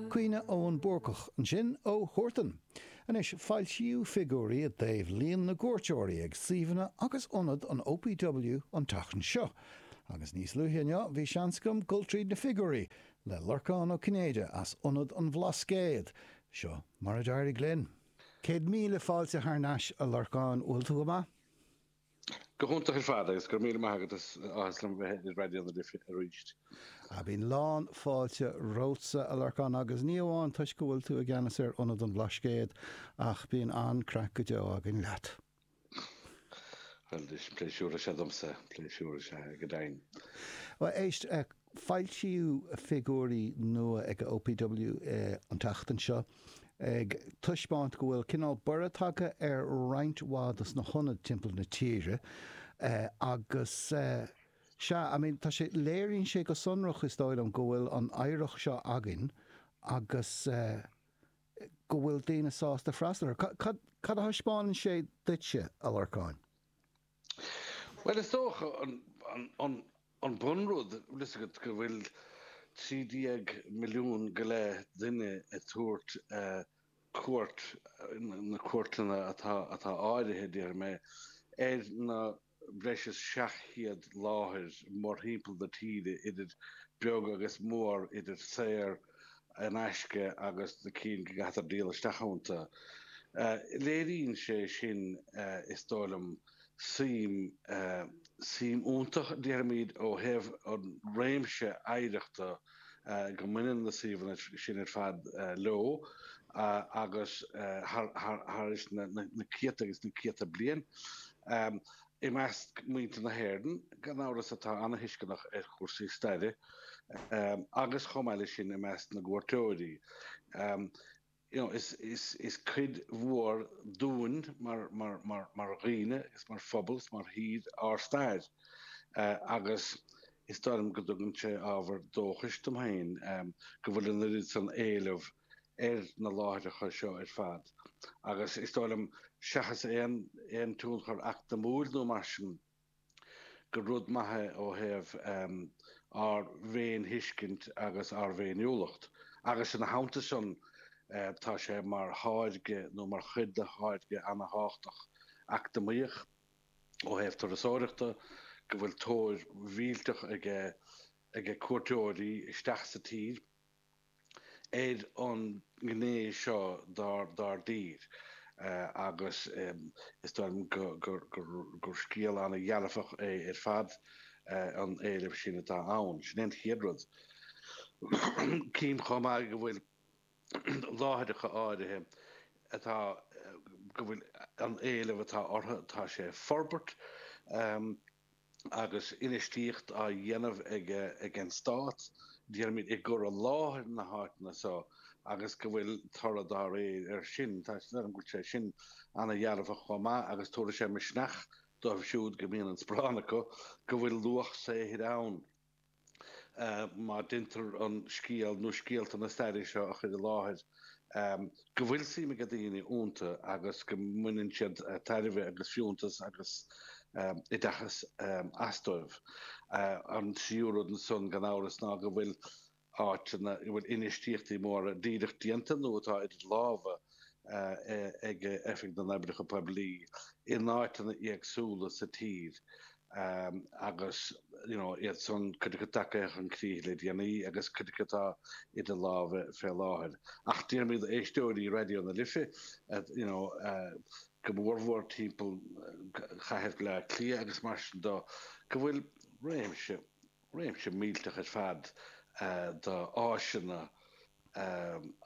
Cumha Eoghain Búrcach ansin ó Huartan. Anois foilsíodh figiúirí i dtaobh líon na gcuairteoirí ag suíomhanna agus ionaid an OPW an tseachtain seo, agus níos luaithe inniu bhí seans agam dul tríd na figiúirí le Lorcán Ó Cinnéide as Ionad an Bhlascaod. Seo mar a d'éirigh linn. Céad míle fáilte thar n-ais a Lorcáin, bhfuil tú go maith? Go hiontach ar fad agus go raibh míle maith agat, is áthas liom bheith ar Raidió na Life arís. Á bíonn lán fáilte romhatsa, a Lorcáin, agus ní amháin toisc go bhfuil tú i gceannas ar Ionad an Bhlascaod, ach bíonn an-craic go deo againn leat. Bhuel, is pléisiúr is ea domsa, pléisiúr is ea go deimhin. Bhuel, éist, Foilsíodh figiúirí nua ag an OPW an tseachtain seo ag taispeáint go bhfuil cineál borradh tagtha ar roinnt mhaith dos na hionaid timpeall na tíre agus sea, I mean, tá sé, léiríonn sé go sonrach is dóigh liom go bhfuil an oidhreacht seo againn agus go bhfuil daoine sásta freastal air. Cad a thaispeánann sé duitse, a Lorcáin? Bhuel, is dócha an bun rud, bhfuil fhios agat, go bhfuil trí déag milliún go leith duine ag tabhairt cuairt, na cuairteanna atá áirithe, déarfaidh mé, ar na breis is seacht gcéad láthair mórthimpeall na tíre, idir beag agus mór, idir saor, in aisce agus na cinn go gcaithtar díol isteach ionta. Léiríonn sé sin, is dóigh liom, suim, suim iontach, déarfaimid, ó thaobh an réimse oidhreachta go mbaineann na suíomhanna sin ar fad leo agus thar, thar, thar is na céadta agus na céadta bliain. I measc mhuintir na hÉireann, gan amhras, atá an-tuisceanach ar chúrsaí staire agus, chomh maith leis sin, i measc na gcuairteoirí, is cuid mhór dúinn mar dhaoine is mar phobal mar thír ár stair agus is dóigh liom go dtugann sé ábhar dóchais dom féin go bhfuil an oiread san éileamh ar na láithreacha seo ar fad agus is dóigh liom, seachas aon tionchar eacnamúil nó mar sin, gur rud maith é ó thaobh ár bhféinthuiscint agus ár bhféiniúlacht agus ina theannta sin tá sé mar tháirge nó mar chuid de tháirge ana-thábhachtach eacnamaíoch ó thaobh turasóireachta go bhfuil tóir mhillteach ag, ag cuairteoirí isteach sa tír. ar an ngné seo dár dtír agus is dóigh liom gur scéal an-dhearfach é ar fad an éileamh sin atá ann. Sin é an chéad rud. Cím chomh maith go bhfuil láithreacha áirithe atá go bhfuil an éileamh atá orthu tá sé ag forbairt. Agus infheistíocht á dhéanamh ag an Stát, déarfaimid, i gcur i láthair na háiteanna seo agus go bhfuil toradh dá réir air sin. Is dóigh liom go bhfuil sé sin an-dhearfach chomh maith agus tabharfaidh sé misneach dóibh siúd go mbíonn an sparán acu go bhfuil luach saothair ann. má deintear an scéal nó scéalta na staire seo a chur i láthair, go bhfuil suim ag daoine iontu agus go mbaineann siad tairbhe agus fiúntas agus oideachas astu. An tríú rud ansan, gan amhras, ná go bhfuil áiteanna i bhfuil infheistíochtaí móra díreach déanta nó atá idir lámha ag Oifig na nOibreacha Poiblí in áiteanna éagsúla sa tír agus iad san cuid acu tagtha chun críche le déanaí agus cuid acu atá idir lámha fé láthair. Ach déarfaimid d'éisteoirí Raidió na Life go mór mhór timpeall Chathair Bhleá Cliath agus mar sin de go bhfuil réimse réimse millteanach ar fad d'áiseanna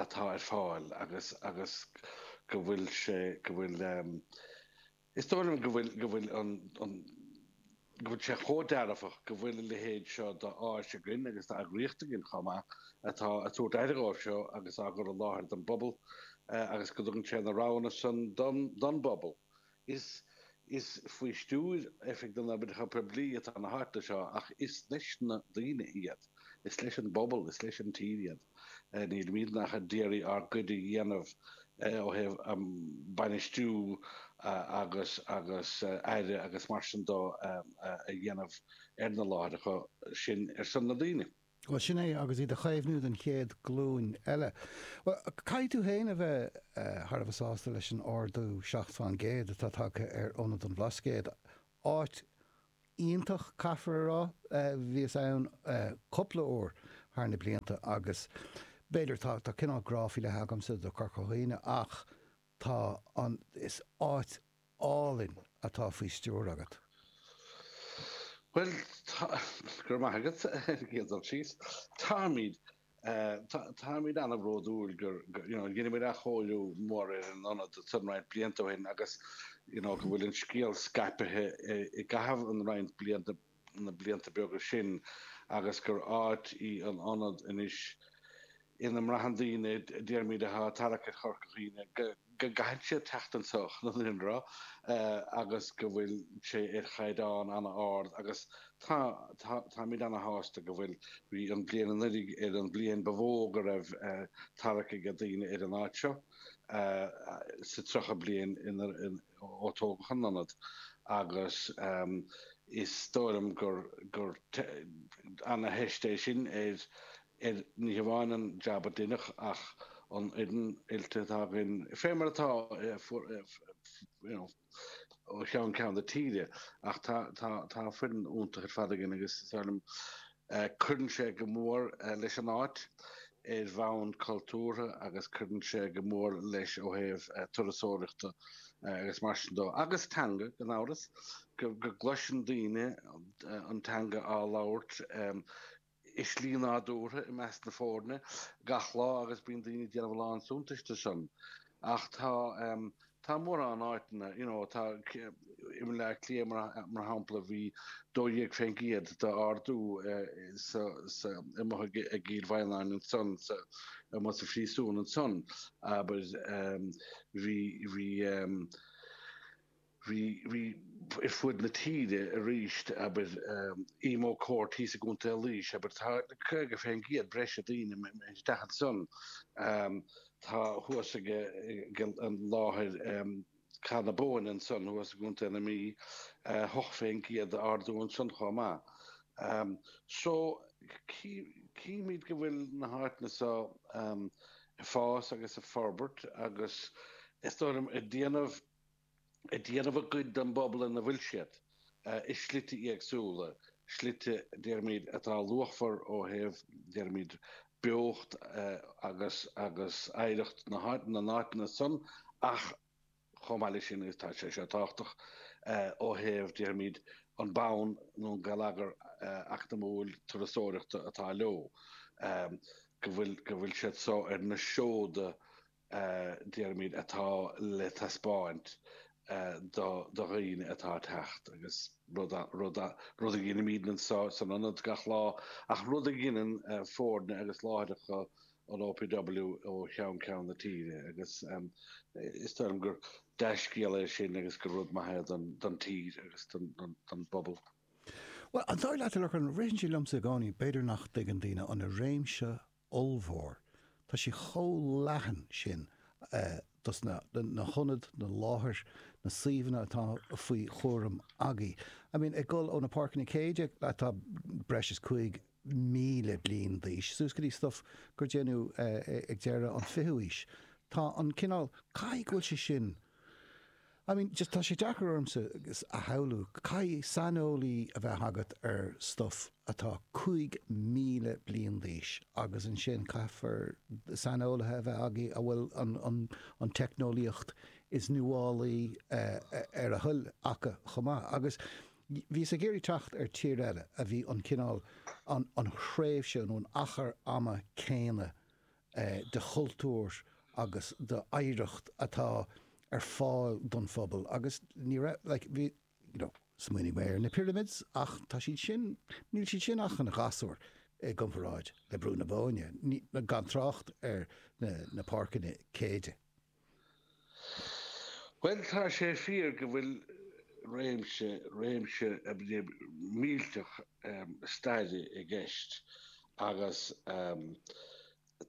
atá ar fáil agus agus go bhfuil sé go bhfuil is dóigh liom go bhfuil go bhfuil an an go bhfuil sé chomh dearfach go bhfuil a leithéid seo d'áis againn agus d'eagraíocht againn chomh maith atá ag tabhairt aire dhóibh seo agus á gcur i láthair don bpobal agus go dtugann sé na roghanna san don don bpobal. Is is faoi stiúir Oifig na nOibreacha Poiblí atá na háiteanna seo ach is leis na daoine iad. Is leis an bpobal, is leis an tír iad. Nílimid ach ag iarraidh ár gcuid a dhéanamh ó thaobh bainistiú agus agus aire agus mar sin dó a dhéanamh ar na láithreacha sin ar son na ndaoine. Bhuel, sin é, agus iad a chaomhnú don chéad glúin eile. Bhuel, caithfidh tú fhéin a bheith thar a bheith sásta leis an ardú seacht fán gcéad atá tagtha ar Ionad an Bhlascaoid. Áit iontach, caithfear a rá. Bhíos ann cupla uair thar na blianta agus b'fhéidir, tá cineál grá faoi leith agamsa do Corca Dhuibhne ach tá an, is áit álainn atá faoi stiúir agat. Bhuel, tá, go raibh maith agat ar an gcéad dul síos. Táimid, táimid an-bhródúil gur, you know, dheineamair athchóiriú mór ar an ionad san roinnt blianta ó shin agus, you know, go bhfuil an scéal scaipthe i gcaitheamh an roinnt blianta na blianta beaga sin agus gur áit í an Ionad anois ina mbraitheann daoine, déarfaimid, atá ag tarrac ar Chorca Dhuibhne go gcaitheann siad teacht anso chun an rud agus go bhfuil sé ar chaighdeán ana-ard agus táimid ana-shásta go bhfuil. Bhí an bhliain anuraidh ar an bhliain ba mhó go raibh tarrac ag daoine ar an áit seo sa 30 bliain ó tógadh an t-ionad agus is dóigh liom gur ana-theist é sin ar ní hamháin an jab a deineadh ach an fhoireann oilte atá againn fé mar atá ó cheann ceann na tíre ach tá foireann iontach ar fad againn agus is dóigh liom Cuireann sé go mór leis an áit ar bhonn cultúrtha agus cuireann sé go mór leis ó thaobh turasóireachta agus mar sin de. Agus teanga, gan amhras, go gcloiseann daoine an teanga á labhairt i slí nádúrtha i measc na foirne gach lá agus bíonn daoine ag déanamh a lán suntais de san. Ach tá. Tá mórán áiteanna, you know, tá, i mBaile Átha Cliath mar shampla, bhí 12% d'ardú amuigh ag Cill Mhaighneann ansan, amuigh sa phríosún ansan, abair, bhí, bhí, bhí, bhí is ar fud na tíre arís, abair, Emo Court thíos i gContae Laois, abair, tá 50% breise daoine ag teacht ansan. Tá thuas ag an láthair Cath na Bóinne ansan thuas i gContae na Mí, ocht fén gcéad d'ardú ansan chomh maith. So, chímid go bhfuil na háiteanna so ag fás agus ag forbairt agus is dóigh liom ag déanamh, ag déanamh a gcuid don bpobal ina bhfuil siad, i slite éagsúla, slite, déarfaimid, atá luachmhar ó thaobh, déarfaimid, beocht agus oidhreacht na n-áiteanna san ach chomh maith leis sin tá sé seo tábhachtach ó thaobh, déarfaimid, an bonn nó an geilleagar eacnamúil turasóireachta atá leo, go bhf- go bhfuil siad so ar na seoda déarfaimid, atá le taispeáint do dhaoine atá ag teacht agus rud a dheinimid anso san ionad gach lá ach rud a dheineann foirne agus láithreacha an OPW ó cheann ceann na tíre agus is dóigh liom gur dea-scéal é sin agus gur rud maith é don tír agus don bpobal. Bhuel, an dóigh leat a Lorcáin, ritheann sé liomsa i gcónaí, b'fhéidir nach dtuigeann daoine an réimse ollmhór. Tá sé chomh leathan sin, tá's agat, na na hionaid, na láthair, na suíomhanna atá faoi chúram agaibh. I mean ag dul ó na páirceanna Céide atá breis is 5,000 bliain d'aois suas go dtí stuff a déanadh ag deireadh an 20ú aois. Tá an cineál, caithfidh go bhfuil sé sin, I mean, just tá sé deacair ormsa a shamhlú, caithfidh saineolaí a bheith agat ar stuff atá 5,000 bliain d'aois agus ansin caithfear saineolaithe a bheith agaibh a bhfuil an teicneolaíocht is nuálaí ar a dtoil acu chomh maith. Agus bhíos ag iarraidh teacht ar thír eile a bhí an cineál, an thréimhse nó an achar ama céanna de chultúr agus d'oidhreacht atá ar fáil don phobal agus ní raibh like you know smaoinigh mé ar na pyramids ach tá siad sin níl siad sin ach ina ngasúir i gcomparáid le Brú na Bóinne, gan trácht ar na páirceanna Céide. Bhuel, tá sé fíor go bhfuil réimse, réimse millteach staire i gceist agus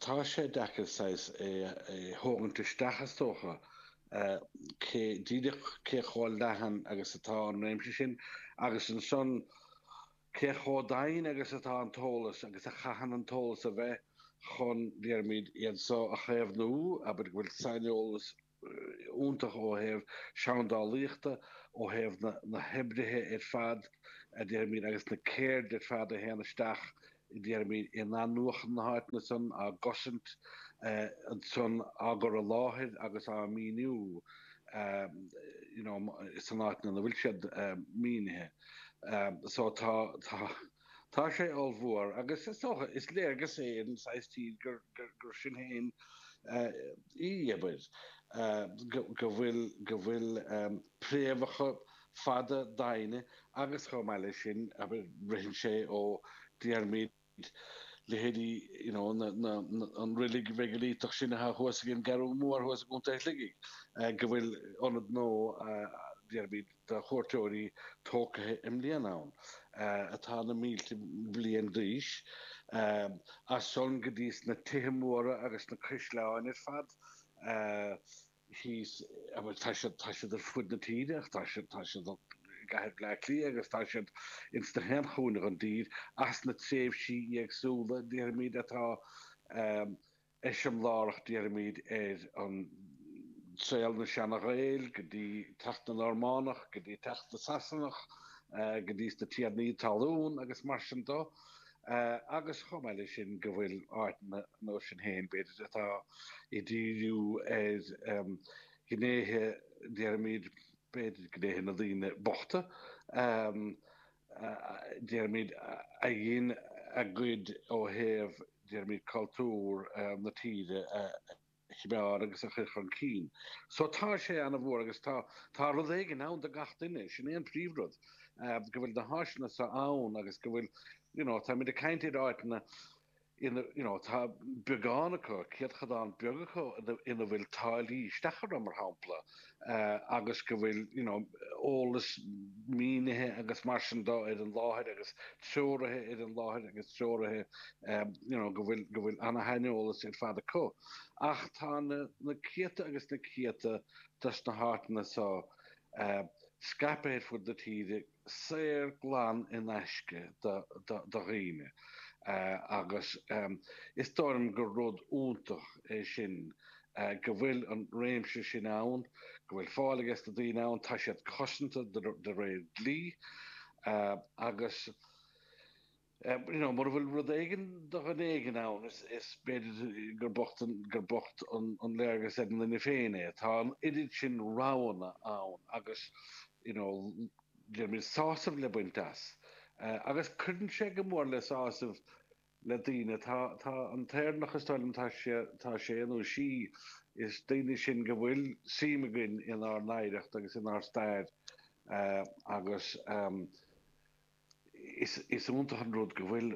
tá sé deacair saghas é a thógaint isteach is dócha, cé, díreach cé chomh leathan agus atá an réimse sin agus ansan, Cé chomh daingean agus atá an t-eolas agus a chaitheann an t-eolas a bheith chun, déarfaimid, iad so a chaomhnú, abair go bhfuil saineolas iontach ó thaobh seandálaíochta, ó thaobh na hoibrithe ar fad, déarfaimid, agus na ceirdeanna ar fad a théann isteach, déarfaimid, in athnuachan na háiteanna san, á gcosaint ansan, á gcur i láthair agus á míniú, you know, san áit ina bhfuil siad mínithe. so tá tá tá sé ollmhór agus is dócha is léargas é ar an saghas tír gur sinn féin í abair go bhfuil go bhfuil préamhacha fada doimhne agus chomh maith leis sin abair ritheann sé ó déarfaimid leithéidí you know an reilig mheigiliteach sin atá thuas ag an gCeathrú Mhór thuas i gContae Shligigh, go bhfuil ionad nua, déarfaimid, do chuairteoirí tógtha i mbliana ann, atá na mílte bliain d'aois. As san go dtí na tithe móra agus na caisleáin ar fad. thíos, agus tá siad, tá siad ar fud na tíre, ach tá siad, tá siad i gcathair Bhleá Cliath agus tá siad ins gach aon chúinne don dtír, as na tréimhsí éagsúla, déarfaimid, atá eiseamlárach, déarfaimid, ar an saol, na Seana-Ghaeil, go dtí teacht na Normánach, go dtí teacht na Sasanach, go dtí sna Tiarnaí Talún agus mar sin de. agus chomh maith leis sin go bhfuil áiteanna iontu sin féin, b'fhéidir, atá ag díriú ar ghnéithe, déarfaimid, b'fhéidir, gnéithe na daoine bochta, déarfaimid, a dhein a gcuid ó thaobh, déarfaimid, cultúr na tíre a. choimeád agus a chur chun cinn. So tá sé an-mhór agus tá tá rud éigin ann do gach duine, sin é an príomhrud, go bhfuil na háiseanna seo ann agus go bhfuil you know táimid ag caint ar áiteanna ina you know tá beagán acu, céatadán beag acu ina bhfuil táillí isteach orthu mar shampla. agus go bhfuil eolas mínithe agus mar sin de ar an láthair agus treoraithe ar an láthair agus treoraithe go bhfuil an-shaineolas ar fad acu. Ach tá na céadta agus na céadta dos na háiteanna so scaipthe ar fud na tíre. saor glan in aisce do dhaoine agus is dóigh liom gur rud iontach é sin go bhfuil an réimse sin ann, go bhfuil fáil aige sna daoine ann, tá siad cosanta de réir dlí agus. you know, mura bhfuil rud éigin do dhuine éigin ann, is b'fhéidir gur bocht an léargas ar an duine féin é. Tá an oiread sin roghanna ann agus, you know, déarfaimid, sásamh le baint as. Agus cuireann sé go mór le sásamh le daoine. Tá an tÉireannach, is dóigh liom, tá sé nó sí, is daoine sinn go bhfuil suim againn inár n-oidhreacht agus inár stair agus, Is iontach an rud go bhfuil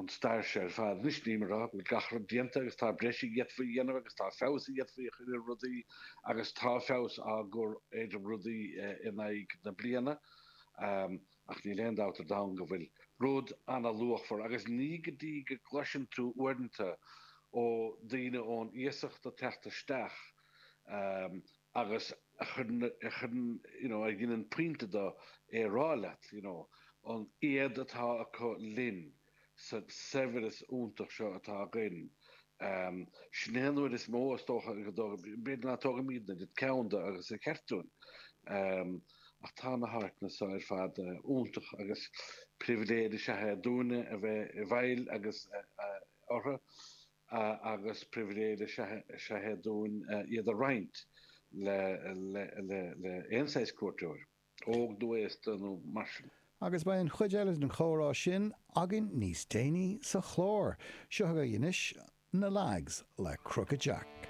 an stair seo ar fad anois, níl mé a rá go bhfuil gach rud déanta agus tá breis a d'fhéadfaí a dhéanamh agus tá feabhas a d'fhéadfaí a chur ar rudaí agus tá feabhas á gcur ar rudaí in aghaidh na bliana ach níl aon dabht ar domhan go bhfuil rud ana-luachmhar agus ní go dtí go gcloiseann tú uaireanta ó daoine ón iasacht ag teacht isteach agus a chuireann, you know, a dheineann pointe de é a rá leat, you know, an éad atá acu linn sa saibhreas iontach seo atá againn. Sin é an rud is mó, is dócha, go dtóg, b'fhéidir nach dtógaimid an oiread ceann de agus ba cheart dúinn, ach tá na háiteanna seo ar fad iontach agus pribhléid is ea é dúinne a bheith i bhfeighil agus orthu agus pribhléid is ea é dúinn iad a roinnt le haon saghas cuairteoir, óg nó aosta nó mar sin. Agus beidh an chuid eile den chomhrá sin againn níos déanaí sa chlár. Seo agaibh anois Na Lads le Crooked Jack.